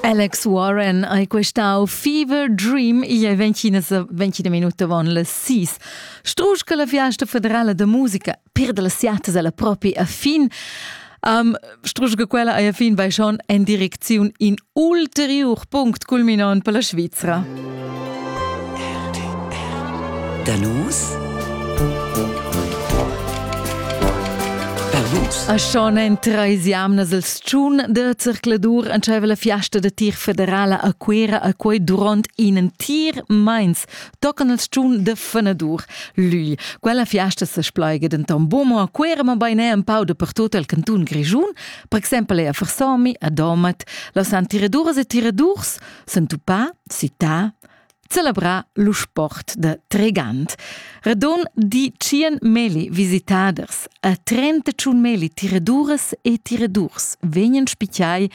Alex Warren ei questau Fever Dream e ventgina minuta von las sis. Strusch che la fiasta federala de musica perde las siatas alla propi a fin. Um, strusch che quella ei a fin vai schon en direcziun in ulteriur punct culminant per la Svizzera. Da nus? A schon en treis jamnas il tschun da circladur entscheiva la fiasta da tir federala a Cuera a quei duront in entir meins tocan il tschun da fenadur. Lui. Quella fiasta se splaiga denton bumo a Cuera ma bein è un pau dappertut el canton Grischun, per exempel è a Versomi, a Domat, las han tiraduras e tiradurs s'entupà, cità, celebrà lo sport da tregant. Radon di tschien meli visitaders, a 31 meli tiraduras e tiradurs vegnan spicchiai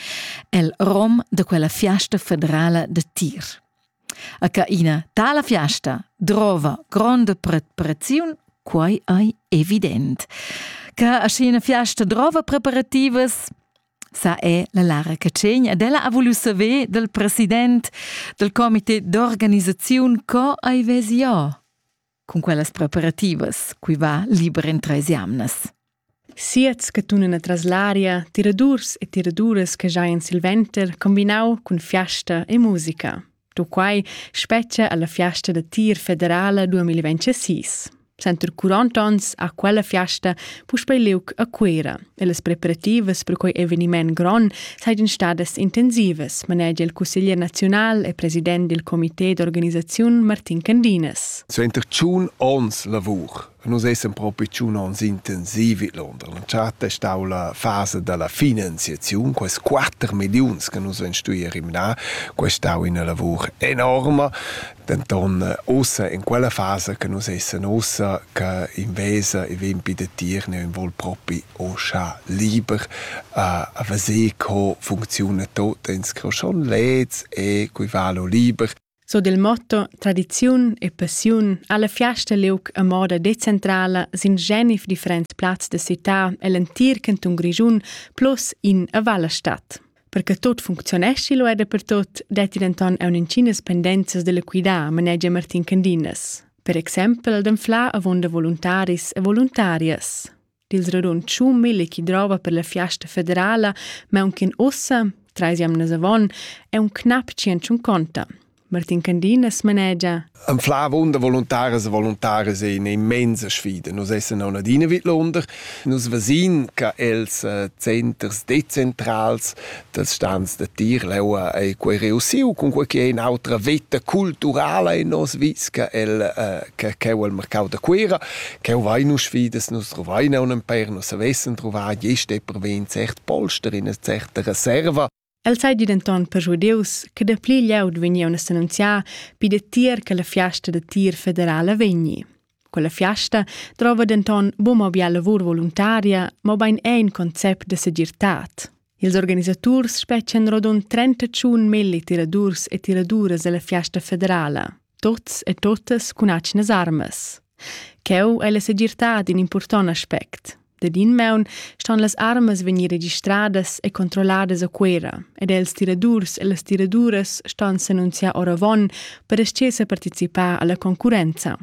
el rom da quella fiasta federala da tir. A ca ina tala fiasta drova gronda preparaziun, quai ei evident. Ca a scena fiasta drova preparativas, sa è la Lara Catschegn ed ella ha vulu saver dal president dal comité d'organisaziun co ei vesi jo cun quellas preparativas cui va liber in treis jamnas. Siets che tunan atras l'aria tiradurs e tiraduras che giain silventer combinau cun fiasta e musica. Dunquai spetga alla fiasta da tir federala 2026. Center 40 onns ha quella fiasta puspei liug a Cuera e las preparativas per quei eveniment gron seigien stadas intensivas, manegia il cusseglier nazional e president dil comité d'organisaziun Martin Candinas. Suenter tschun onns lavur Nus essan propi tschun ons intensiv vid Londra. La charta è stau la fasa dalla finanziaziun. Quels quatter milliuns che nus vein stuì rimnar, quei è stau ina lavur enorma. Denton ussa, in quella fasa che nus essan ussa, che invesa e vegn pi da tier, neu vol propi uschè liber a, a veser co funcziuna tot en scroschond lez e coi vala liber. So del motto tradiziun e passiun ha la fiasta liug a moda decentrala sin genif differents plazs da città e l'entir canton Grischun plus in a Valle Stadt. Perché tot functionesci lo è dappertut, detti denton a un'incinas pendenzas dell'equidà, manegia Martin Candinas. Per exempel d'anflar avonda voluntaris e voluntarias. dil radunschun mille chi drova per la fiasta federala, ma aunc ussa, trais jamnas avon, è un knap tschient conta. Martin Candinas manegia Ein fla wunder voluntares e voluntares in immense sfide. Nus essen an adina vid Londra. Nus vesin che els äh, centers dezentrals dals stans da tir l'aua ei quei reussiu cun quei che in autra veta culturala in nos visca el uh, che cheu al mercau da Cuera cheu vai nu sfidas nus trovai ne un per nus savessen trovar geste per ven cert polster in eine certe reserva El sai di denton per giudeus che da pli glieud vegni a annunziar pi da tier che la fiasta da tir federala vegni. Quella fiasta drova denton buca bia lavur voluntaria, mobein è in concept de segirtad. Ils organisaturs spetgan rodund 31 milli tiradurs e tiraduras alla fiasta federala, tots e totas cun atgnas armas. Cheu è la segirtad in important aspect. Dad in maun ston las armas vegnir registradas e controlladas a Cuera ed els tiradurs e las tiraduras ston s'annunziar oravon per ascher sa participar alla concurrenza.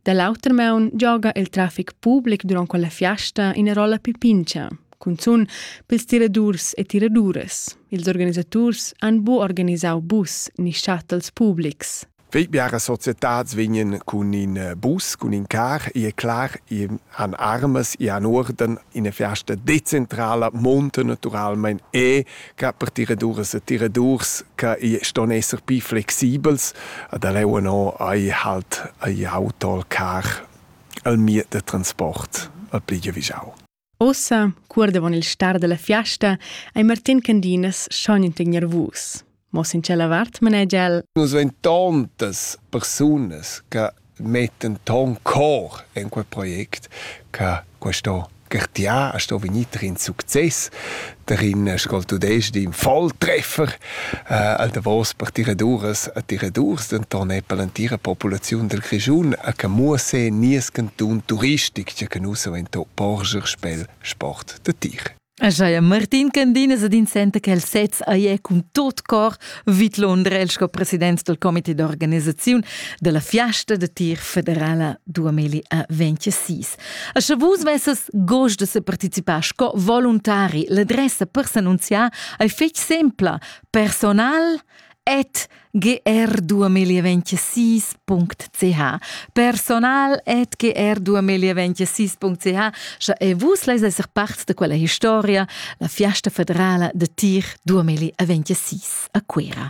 Da l'auter maun gioga il trafic public durant quella fiasta ina rolla più pincha, cunzun pels tiradurs e tiraduras. Ils organisaturs han bu organisau bus ni shuttles publics. Wie biaras societads vegnan cun in bus, cun in car, e è clar, i han armas, i han urden, ina fiasta decentrala monta naturalmein e che per tiraduras e tiradurs che ston esser pli flexibels, da leu no ei halt ei auto al car al mir da transport al pli giavischau. Ossa, cur davon il star dalla fiasta, ei Martin Candinas schon in tegner vus. Mo sin tschella vart manegia el: Nus vein tontas persunas che mettan ton cor en quel project che questo Gertiar sto vegnir in success. darin es col tudesc din Volltreffer äh, al davos per tiraduras e tiradurs, denton è per l'entira populaziun del Grischun a che muosse nies canton turistic che canusa in to porger spel sport de tir. Ajaia Martin Candinas ad insenta che il sez aie cun tot cor vid Londrel sco president del comité d'organisaziun della fiasta de tir federala 2026. E sche vus vesses gust de se participar sco voluntari l'adressa per s'annunziar ei fetg sempla personal at gr2026.ch personal at gr2026.ch sche e vus leis esser parts de quella historia la fiasta federala de tir 2026 a Cuera.